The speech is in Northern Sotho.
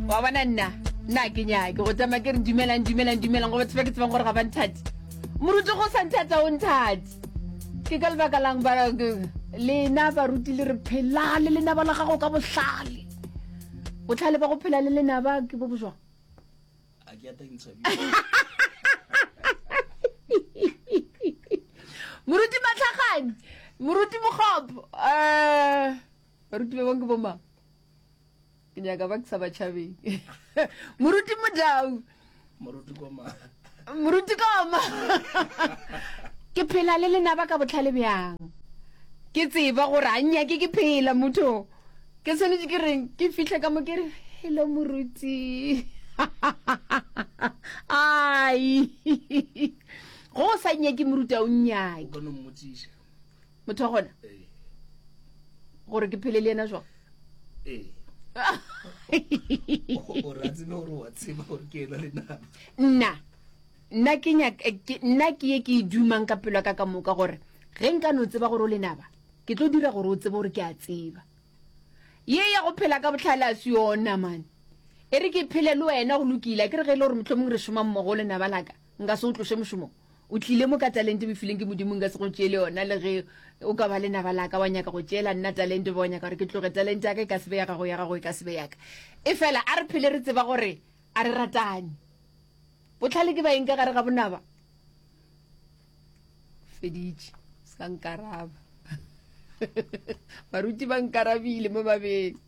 wa bona nna nna ke nyake go tsamaya ke re dumelang dumelang dumelang go batho ba ke tsebang gore ga ba nthati moruti go sa nthata o nthati ke ka lebaka lang ba lena baruti le re phela le lenaba la gago ka botlhale botlhale ba go phela le lenaba ke bo bojwang moruti matlhagane moruti mogopo um eh, baruti ba bangwe ke bomang ke nyaka ba ke sa batšhabeng moruti modau moruti koma moruti koma ke phela le lenaba ka botlhale bjang ke tseba gore a nnyake ke phela motho ke tshwanetse ke reng ke fitlhe ka mo ke re hello moruti ai go o sa nnyake moruti a o nnyake motho gona gore ke phele le yena jwang nna nna ke nna ke ye ke e dumang ka pelo ka ka moka gore ge nka no tseba gore o lenaba ke tlo dira gore o tsebe gore ke a tseba ye ya go phela ka botlhale a se yona mane e re ke phele le wena go lokile ke re ge e le gore motlhomong re šomang mmogo o lenaba laka nka se o tlose mošomong O tlile mo ka talente o e fileng ke Modimo, nka se go tšeele yona le ge o ka ba lenaba la ka, wa nyaka go tšeela nna talente, ba wa nyaka gore ke tloge. Talente ya ka e ka se be ya gago, ya gago e ka se be ya ka. Efela a re phele re tseba gore a re ratane. Bohlale ke baeng ka gare ga bonaba? Feditše, se ka nkaraba. Baruti ba nkarabile mo babeng.